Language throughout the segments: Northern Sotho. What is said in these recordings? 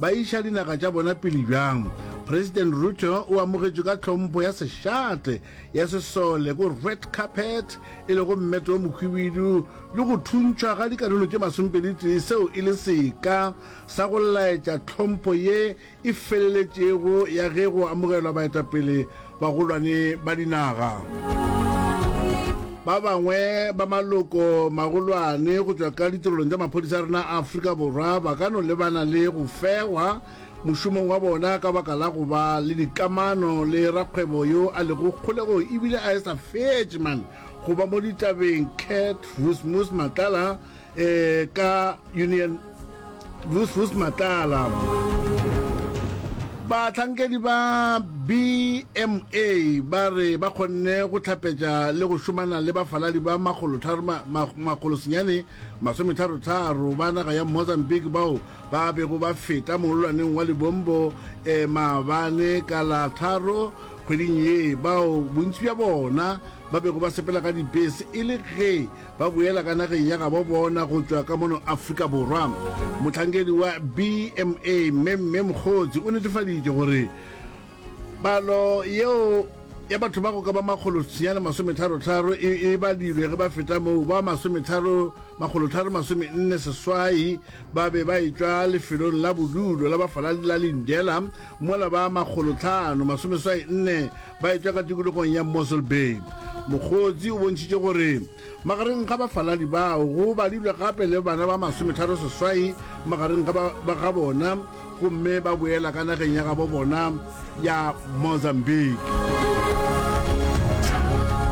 Ba iša dinaga tša bona pele bjang? President Ruto o amogetšwe ka tlhompho ya sešate ya sesole go red carpet e lego mmete o mohwibidu le go thuntšhwa ga dikarolo tše masompeditee seo e le seka sa go laetša tlhompho ye e feleletšego ya ge go amogelwa baetapele Bagolwane ba dinaga. Ba bangwe ba maloko magolwane go tšwa ka ditirelong tša maphodisa a rena a Afrika Borwa ba ka no lebana le go fegwa mošomong wa bona ka baka la go ba le dikamano le rakgwebo yo a lego kgolegong ebile a e sa fetše man go ba mo ditabeng Kurt Rusmus Matlala eh, ka union vus matlala batlhankedi ba bma ba re ba kgonne go tlhapetša le go šomana le bafaladi ba makgolosenyane masometharotharo ba naga ya mozambique bao ba bego ba feta mololwaneng wa libombo e eh, maabane ka la tharo kgweding ye bao bontši bja bona ba bego ba sepela ka dibese e le ge ba boela ka nageng ya gabo bona go tšwa ka mono Afrika Borwa. Mohlankedi wa BMA Mme Mme Mokgotsi o netefaditše gore palo yeo ya batho ba go ka ba makgolo senyane masometharo-tharo e, e badilwe ge ba feta moo ba masometharo makgolotharo masomenne seswai ba be ba etšwa lefelong la bodulo la bafaladi la Lindela mola ba makgolotlhano masomeswai nne Ba etšwa ka tikologong ya Mossel Bay. Mokgotsi o bontšhitše gore magareng ga bafaladi bao go badilwe gape le bana ba masometharo seswai magareng ga ba ga bona gomme ba boela ka nageng ya gabo bona ya Mozambique.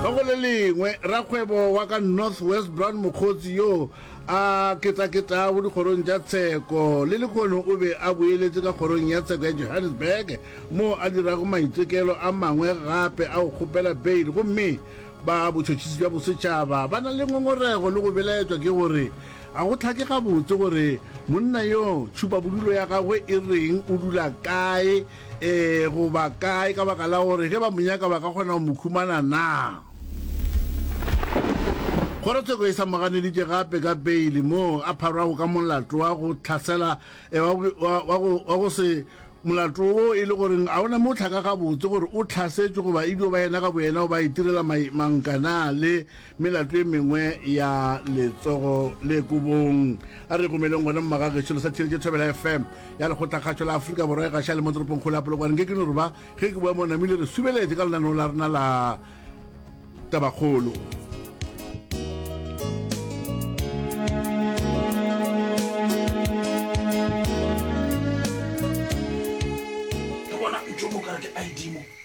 Ka go le lengwe, rakgwebo wa ka North West Brown Mokgotsi yo A ketaketa go dikgorong tša tsheko, le lehono o be a boeletše ka kgorong ya tsheko ya Johannesburg moo a dirago maitekelo a mangwe gape a go kgopela beile gomme ba Botšhotšhisi bja Bosetšhaba ba na le ngongorego le go belaetšwa ke gore ga go hlake gabotse gore monna yoo tšhupabodulo ya gagwe e reng, o dula kae Ee goba kae, ka baka la gore ge ba mo nyaka ba ka kgona go mo khumana na? Kgorotsheko e sa mo ganeditše gape ka peile moo a pharwago ka molato wa go tlhasela wa go se molato wo e le goreng a ona mo o tlhaka gabotse gore o tlhasetšwe goba e dio ba yena ka boyena o ba itirela manka na le Melato e mengwe ya letsogo le kobong. A re gomeleng gona mmagage selo sa theletše Thobela FM ya lekgotlakgatšo la Afrika Borwa e gaša le mo toropongkgolo ya Polokwane nke ke no re ba ge ke boa mo namile re subeletše ka lenaneo la rena la Tabakgolo.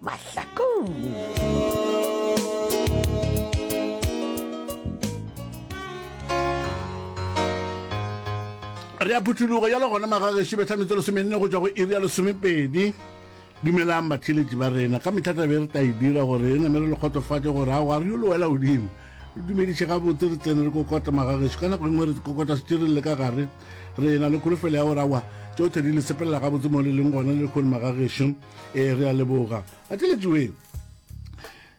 mahlakong re a phuthologo ya le gona magageši betlhametse lesomenne go tšwa go iri ya lesomepedi dumelang batheletši ba rena ka metlhata be re tla e dira gore e namere le kgotsofatše gore a wa re yo le wela godimo re dumediše gabotse re tsene re kokota magageši ka nako engwe re kokota setireng le ka gare re na le kholofelo ya gore awa tsotlhe di le sepelela gabotse mo le leng gona le kgone magageši ee re a leboga ateletsoeng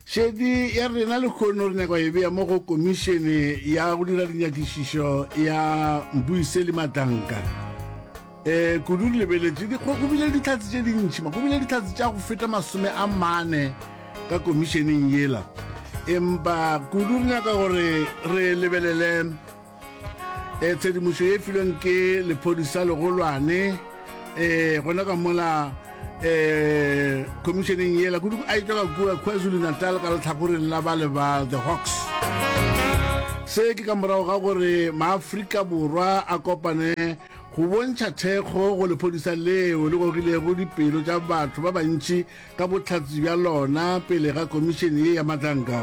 šedi ya rena lekgono re nyaka e bea mo go komišene ya go dira dinyakišišo ya mbuiseli matanka um e, kudu re lebeletše go bile ditlhatse tše dintšhi go bile ditlhatse tša go feta masome a mane ka komišeneng yela empa kudu re nyaka gore re lebelele e tshedimošo ye filweng ke lephodisa legolwane e gona ka mola e khomišeneng yela kudu a etswa ka kua kwazulu natal ka letlhakoreng la bale ba the hawks se ke ka morago ga gore maaforika borwa a kopane go bontšha thekgo go lephodisa leo le gogilego dipelo tša batho ba bantši ka bohlatsi bja lona pele ga komišene ye ya matlanka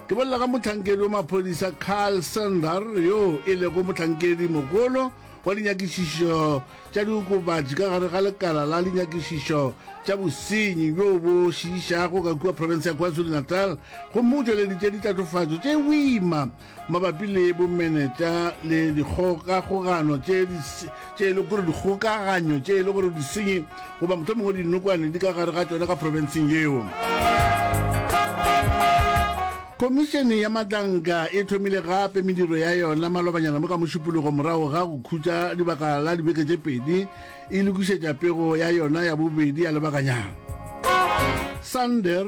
ke bolela ka motlhankedi wa maphodisa carl sander yo e lego motlhankedi mogolo wa dinyakišišo tša diokobatši ka gare ga lekala la dinyakišišo tša bosenyi bjo bo šiišago ka kua profense ya kwazulu-natal gomme o tšweleditše ditlatofatšo tše boima mabapi le bomenetša le dikgokagogano tše e le gore dikgokaganyo tše e le gore disenyi goba motho mongwe dinokwane di ka gare ga tšona ka profenseng yeo khomišene ya matlanka e thomile gape mediro ya yona malobanyana mo ka mošupologo morago ga go khutša dibaka la dibeke tše pedi e lokišetša pego ya yona ya bobedi ya lebakanyana sander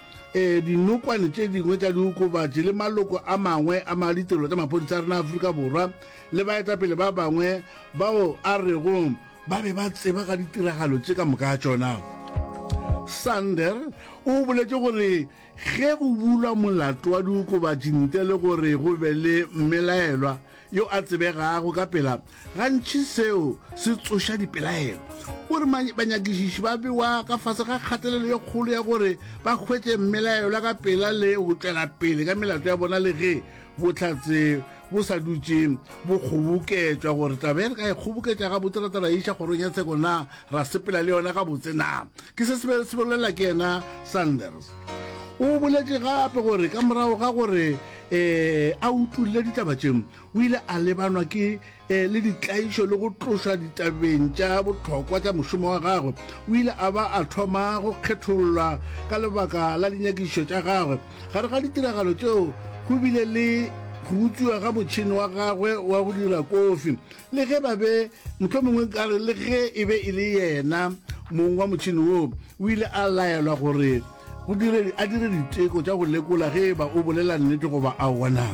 Ee, dinokwane tše dingwe tša diokobatši le maloko a mangwe a ma ditirelo tša maphodisa a rena a Afrika Borwa le baetapele ba bangwe bao a rego ba be ba tseba ka ditiragalo tše ka moka tšona. Sander o boletše gore ge go bulwa molato wa diokobatši ntle le gore go be le mmelaelwa, yo a tsebegago ka pela gantši seo se tsoša dipelaelo o re banyakišiši ba bewa ka fase ga kgatelelo ye kgolo ya gore ba hwetše mmelaelwa ka pela le go tšwela pele ka melato ya bona le ge bohlatse bo sa dutše bo kgoboketšwa gore taba ye re ka e kgoboketša ga botse ra tara iša kgorong ya tsheko na ra sepela le yona ga botse na ke se se bolela ke yena sanders o boletše gape gore ka morago ga gore ee a utulle ditaba tše o ile a lebanwa ke eh, le ditlaišo le go tlošwa ditabeng tša botlhokwa tša mošomo wa gagwe o ile a ba a thoma go kgethollwa ka lebaka la dinyakišo tša gagwe gare ga ditiragalo tšeo go bile le go utswiwa ga motšhini wa gagwe wa go dira kofi le ge ba be mohlomongwe ka re le ge e be e le yena mong wa motšhini woo o ile a laelwa gore go dire a dire diteko tša go lekola ge e ba o bolela nnete goba a wona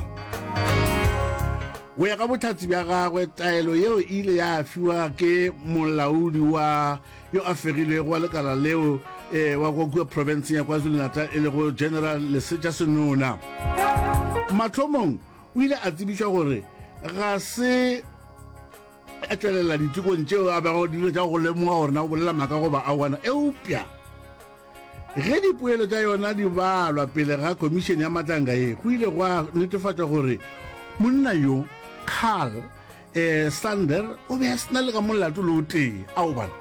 go ya ka botlhatsi bja gagwe taelo yeo e ile ya fiwa ke molaodi wa yo a fegilwego wa lekala leo e wa go kua provinceng ya kwazulu-natal e lego general lesetša senona matlhomong O ile a tsebiša gore ga se a tšwelela ditekong tšeo a bego dilo tša go lemoga gore na o bolela maaka goba awana eupša ge dipoelo tša yona di balwa pele ga khomišene ya matlanga ye go ile gwa netefatša gore monna yo carl ee sander o be a sena le ka molato le o tee ao bana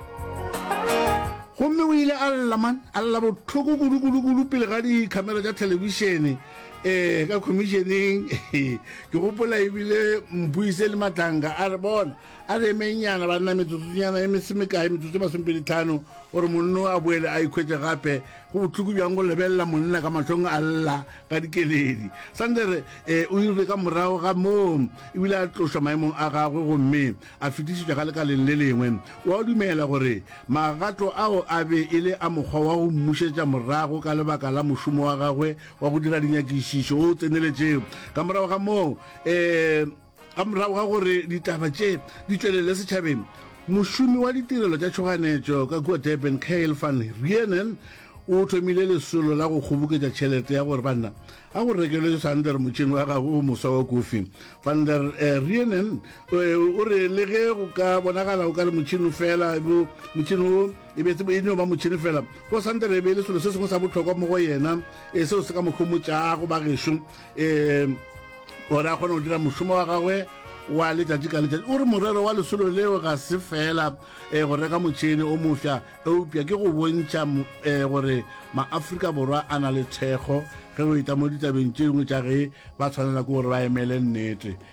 gomme o ile a lla man a lla botlhoko kudu-kudu-kudu pele ga dikhamera tša thelebišene um ee, ka khomišeneng ke gopola ebile mpuise le matlanka a re bona a re emennyana ba nna metsotsonyana e mese mekae metsotso e masomepeditlhano gore monno a boele a ikhwetse gape go botlhoko bjang go lebelela monna ka matlhong a lla ga Dikeledi. Sander e, o irile ka morago ga moo ebile a tlošwa maemong a gagwe gomme a fetišetšwa ka lekaleng le lengwe. O a dumela gore magato ao a be e le a mokgwa wa go mmušetša morago ka lebaka la mošomo wa gagwe wa go dira dinyakišišo o o tseneletšego. Ka morago ga moo e, Ka morago ga gore ditaba tše di tšwelele setšhabeng, mošomi wa ditirelo tša tšhoganetšo ka kua Durban Kyle van Reenen o thomile lesolo la go kgoboketša tšhelete ya gore banna a go rekelwe Sander motšhene wa gagwe o moswa wa kofi. Van der eh, Reenen eh, o re le ge go ka bonagala o ka re motšhene fela motšhene o e be e no ba motšhene fela go Sander e be e le selo se sengwe sa bohlokwa mo go yena e seo se ka mo homotšago bagešo um gore a kgone go dira mošomo wa gagwe wa letšatši ka letšatši o re morero wa lesolo leo ga se fela um go reka motšhene o mofsa eupša ke go bontšha um gore maaforika borwa a na le thekgo ge go eta mo ditabeng tše dingwe tša ge ba tshwanela ke gore ba emele nnete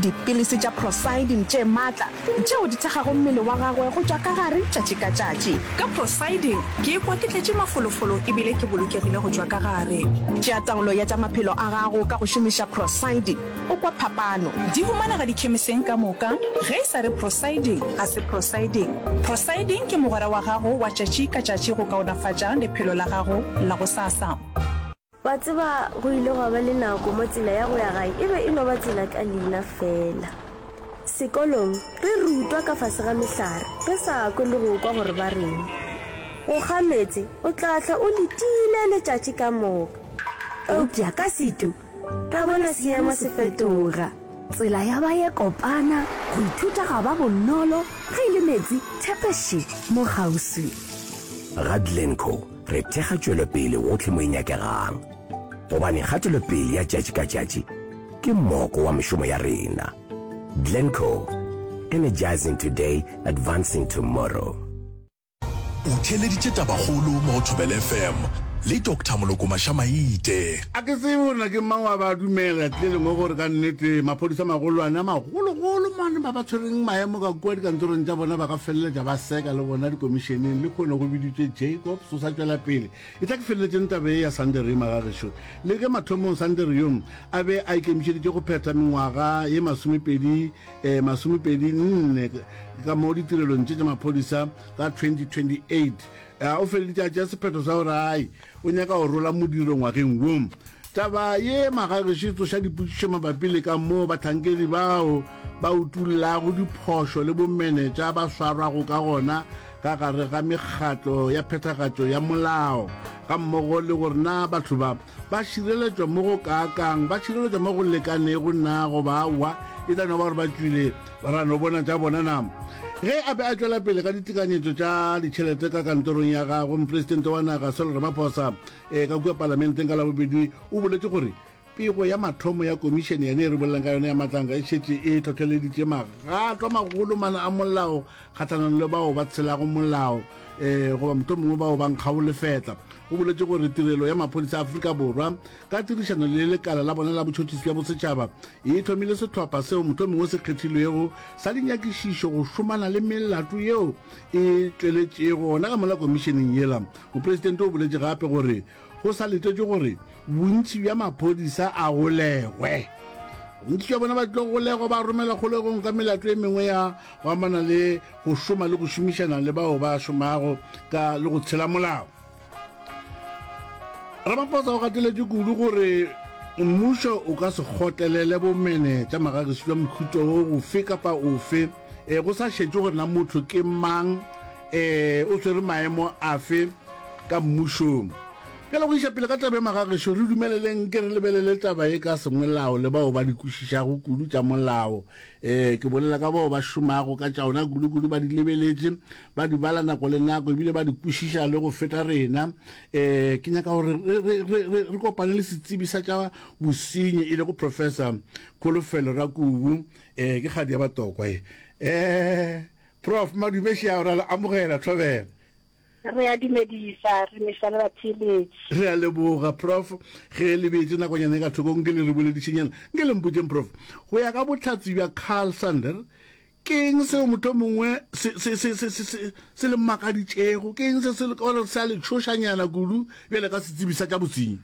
Dipilisi tša prosidin tše matla tšeo di thekgago mmele wa gagwe go tšwa ka gare tšatši ka tšatši. Ka prosidin ke ikwa ke tletše mafolofolo e bile ke bolokegile go tšwa ka gare. Tšea taolo ya tša maphelo a gago ka go šomiša prosidin, o kwa phapano. Di humanega dikhemiseng ka moka. Ge e sa re prosidin, ga se prosidin. Prosidin ke mogwera wa gago wa tšatši ka tšatši go kaonafatša lephelo la gago la gosasa. Wa tseba, go ile gwa ba le nako mo tsela ya go ya gae e be e no ba tsela ka leina feela. Sekolong, re rutwa ka fase ga mehlare, re sa kwe le go kwa gore ba reng. Go kga meetse, o tla hlwa o letile letšatši ka moka. Eupša ka Setu, ra bona seemo se fetoga. Tsela ya ba ye kopana, go ithuta ga ba bonolo, ge e le meetse, thepeše mo kgauswi. Ga Glencoe, re thekga tšwelopele gohle mo e nyakegang, gobane kgatelopele ya tšatši ka tšatši ke mmoko wa mešomo ya rena. Glencoe, Energizing Today, Advancing Tomorrow. O theeleditše Tabakgolo mo go Thobela FM le Doctor Moloko Maša-Maite. A ke tsebe gore na ke mang wa ba dumela tle lengwe gore ka nnete maphodisa a magolwane a magologolo mane ba ba tshwereng maemo ka kua dikantorong tša bona ba ka feleletša ba seka le bona dikomišeneng le kgone go biditše jacob so sa tšwela pele e tla ke feleletšeng taba e ya sandere e magagešo le ge mathomong sandere yong a be a ikemišeditše go phetha mengwaga ye masomepedi eh, masomepedi nne ka mo ditirelong tše tša maphodisa ka 2028 eh, o feleletše a tšea sephetho sa gore ai O nyaka go rola modiro ngwageng wo. Taba ye magagešo e tsoša dipotšišo mabapi le ka moo bahlankedi bao ba utollago diphošo le bomenetša ba swarwago ka gona ka gare ga mekgatlo ya phethagatšo ya molao, gammogo le gore na batho ba ba šireletšwa mo go kaakang, ba šireletšwa mo go lekanego na goba aowa, e tla no ba gore ba tšwile Ra no bona tša bona na? Ge a be a tšwela pele ka ditekanyetšo tša ditšhelete ka kantorong ya gagwe, Mopresidente wa naga Cyril Ramaphosa e ka kua Palamenteng ka Labobedi o boletše gore pego ya mathomo ya komišene yane e re bolelang ka yona ya matlanga e šetše e hlohleleditše magato a magolo mana a molao kgahlanong le bao ba tshelago molao um goba mohlomongwe bao ba nkgago lefetla. O boletše gore tirelo ya maphodisa a Afrika Borwa ka tirišano le lekala la bona la botšhotšhisi bja bosetšhaba E thomile sehlopha seo mohlomongwe se kgethilwego sa dinyakišišo go šomana le melato yeo e tšweletšego gona ka mola komišeneng yela. Mopresidente o boletše gape gore go sa letetšwe gore bontši bja maphodisa a golegwe, bontši bja bona ba tlo golegwa ba romelwa kgolegong ka melato e mengwe ya go amana le go šoma le go šomišana le bao ba šomago ka le go tshela molao. ramaphosa o gateletše kudu gore mmušo o ka se kgotlelele bomene tša magagisi jwa mohuto o gofe kapa ofe e go sa šetše gore na motho ke mang um o swere maemo afe ka mmušong pele go iša pele ka taba e magageso re dumeleleng ke re lebelele taba e ka sengwelao le bao ba di kwešišago kudu tša molao um ke bolela ka bao ba šomago ka tšaona kudu-kudu ba di lebeletše ba di bala nako le nako ebile ba di kwešiša le go feta rena um ke nyaka gore re kopane le setsebi sa tša bosenyi e lego professor kholofelo ra kubu um ke kgadi ya batokwa e um prof madumeša ra le amogela thobela re a dumedisa re mešwa le batheeletši re a leboga prof ge le beetse nakonyana e ka thokong ke le re boledišenyana nke le mpotšeng prof go ya ka botlhatsi bja carl sander Ke eng seo mohlomongwe se, se, se, se, se, se, se le mmakaditšego? Ke eng se se le gore sa le tšhošanyana kudu bjale ka setsebi sa tša bosenyi?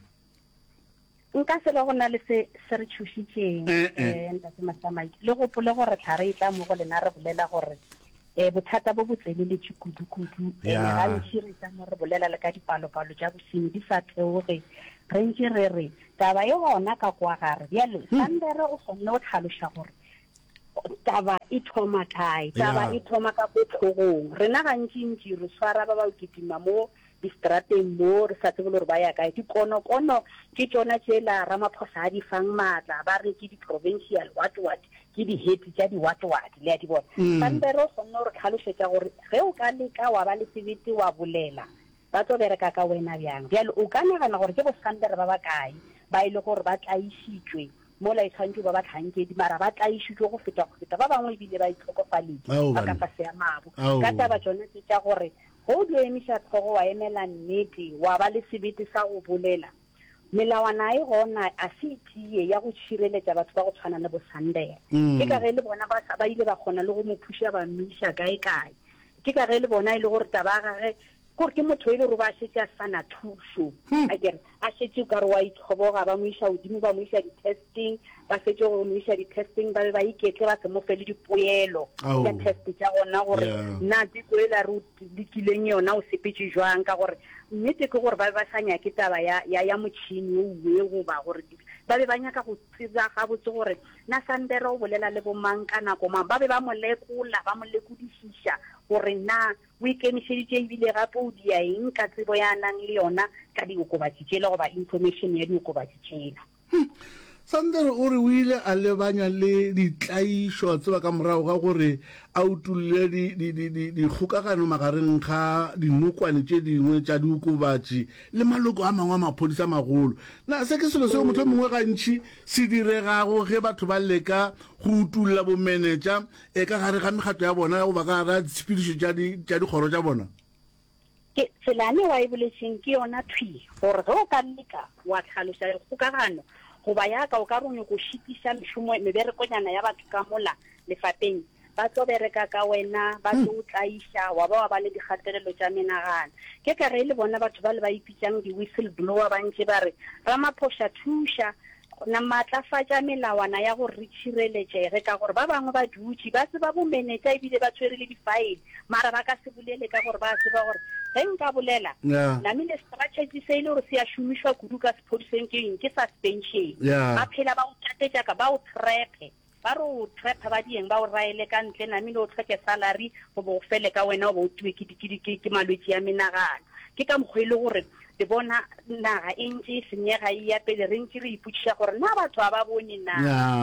Nka se be go na le se se re tšhošitšeng, Eh-eh. eh, Ntate Mahlamaji. Le gopole gore thla re etla mo go lena re bolela gore eh, bothata bo bo tseleletše kudu-kudu, ene Ya. gantši re etla mo re bolela le ka dipalo-palo tša bosenyi di sa theoge. Re ntše re re, taba e gona ka kwa gare. Bjale, Sandere o kgonne go tlhaloša gore taba e thoma kae taba e thoma ka ko tlhogong rena gantšintši re tshwara ba ba kitima mo distrateng mo re sa tsebe le gore ba ya kae dikonokono ke tsona tsela ramaphosa a di fang maatla ba re ke di-provincial what what ke di-head tša di-what what le ya di bona mm. pampere o kgonne gore tlhalosetša gore ge o ka leka wa ba le sebete wa bolela Ba tlo bereka ka wena bjang? Bjale o ka nagana gore ke bosampere ba bakae ba e lego gore ba tlaišitšwe mola e swantšwe e ba bahlankedi, mara ba tlaišitšwe go feta go feta ba bangwe e bile ba itlhokofaletše Ao, ba ka banna. fase a mabu Ao. ka taba tšona tše tša gore ge o dio emiša hlogo wa emela nnete, wa ba le sebete sa go bolela. Melawana e gona a se e tiye ya go šireletša batho ba go tshwana le boSandera. Ke ka ge le bona ba sa ba ile ba kgona le go mo phuša ba mmiša kae kae. Ke ka ge le bona e le gore taba ya gage kore ke motho e le gore ba šetše a sa na thušo. A kere a šetše ka re wa itlhoboga ba mo iša godimo ba mo iša di-testing ba fetše go mo iša di-testing ba be ba iketle ba se mo fe le dipoelo tša test tša gona gore na tseko e la re Lokileng yona o sepetše jwang? Ka gore nnete ke gore ba be ba sa nyake taba ya, ya, ya motšhene o we goba gore di, ba be ba nyaka go tseba gabotse gore na Sandera o bolela le bomang ka nako mang. Ba be ba mo lekola, ba mo lekodišiša gore na o ikemišeditše e bile gape o dia eng ka tsebo ya a nang le yona ka diokobatši tšela goba information ya diokobatši tšela. Hum! Sander o re o ile a lebanya le ditlaišo, a tseba ka morago ga gore a utolle di, di, di, di, dikgokagano magareng ga dinokwane tše dingwe tša diokobatši le maloko a mangwe a maphodisa a magolo. Na se ke selo seo mohlomongwe gantši se diregago ge batho ba leka go utolla bomenetša e ka gare ga mekgatlo ya bona ya go ba ka gare ga ditshepedišo tša di, tša dikgoro tša bona? Ke, tsela yane wa e boletšeng ke yona thwi, gore ge o ka leka wa hlaloša dikgokagano, goba ya ka o ka re o nyoko šitiša mešomo, meberekonyana ya batho ka mola lefapeng, ba tlo bereka ka wena, ba tlo o tlaiša, wa ba wa ba le dikgatelelo tša menagano. Ke tla re e le bona batho bale ba ipitšang di-whistleblower ba ntše ba re, Ramaphosa, thuša! Go na maatlafatša melawana ya gore re tšhireletšege ka gore ba bangwe ba dutše ba tseba bomenetša e bile ba tshwere le difaele mara ba ka se bolele ka gore ba tseba gore ge nka bolela nami le strategy se e le gore se a šomišwa kudu ka sephodiseng ke eng ke suspension ba phela ba o tlatetša ka ba o trepe Ba re o trap ba dieng ba o raele ka ntle namile o tlhoke salary go bo go fele ka wena o bo o tiwe ke di ke ke ke malwetši a menagano. Ke ka mokgo e le gore le bona naga e ntše e senyega e eya pele re ntše re ipotšiša gore na batho ga ba bone na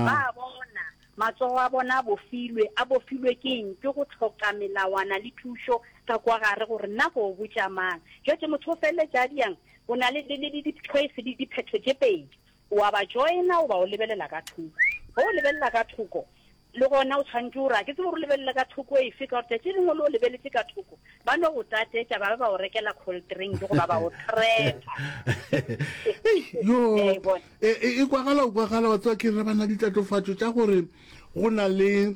ba a bona matsogo a bona a bofilwe a bofilwe ke eng ke go tlhoka melawana le thušo ka kwa gare gore na go botša mang jwetše motho o feleletša a diang o na le le le le di choice di diphetho tše pedi O a ba joina goba o lebelela ka thoko. Ge o lebelela ka thoko, le gona o tshwanetše gore, A ke tsebe gore o lebelele ka thoko efe, ka gore tšatši le lengwe le o lebeletše ka thoko, ba no go tatetša ba be ba o rekela kholtrinki goba ba o threpa. Yo, Le a e bona? e, e, e kwagala, o kwagala, wa tseba ke re bana ditatofatšo tša gore go na le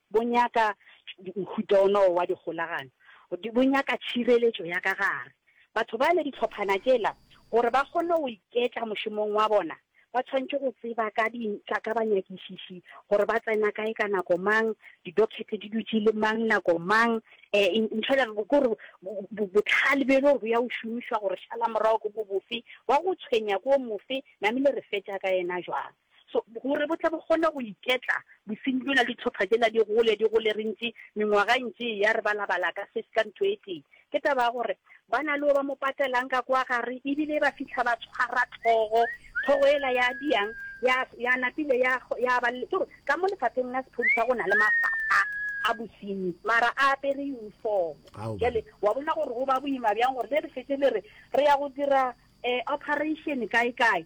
Bo nyaka mohuta ona wa dikgolagano, bo nyaka tšhireletšo ya ka gare. Batho bale, dihlophana tšela, gore ba kgone go iketla mošomong wa bona, ba tshwanetše go tseba ka di, ka, ka banyakišiši, gore ba tsena kae ka nako mang, di-docket di dutše le mang nako mang. E, ntho yela ke gore bo, bohlale bjo e le gore bo ya go šomišwa gore šalamorago ke bo bofe, wa go tshwenya ke wo mofe, namile re fetša ka yena jwang. So, gore bo tle bo kgone go iketla, bosenyi bjola, dihlopha tšela di gole, di gole, re ntše, mengwaga e ntše e ya, re balabala ka se, ka ntho e tee. Ke taba ya gore, ba na le yo ba mo patelang ka kwa gare, e bile ba fihla ba tshwara tlhogo, tlhogo yela ya diang, ya, ya napile ya, ya ba le, ke gore, ka mo lefapheng la sephodisa go na le mafapha a bosenyi, mara a apere uniform. Ao, bana. Bjale, wa bona gore go ba boima bjang gore le re šetše le re, re ya go dira, eh, operation kae-kae.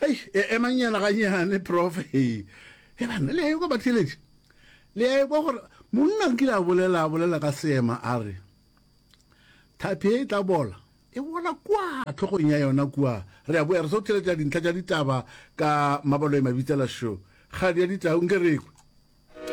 Hei, e, emanyana ganyane, Prof. Hei, he banna, le a ekwa batheeletši? Le a ekwa gore monna nkile a bolela, a bolela ka seema, a re, Thapi e tla bola, e bola kua tlhogong ya yona kua. Re a boya re so theeletša dintlha tša ditaba ka mabaloemabitsela, šo, kgadi ya ditau, nke re ekwe.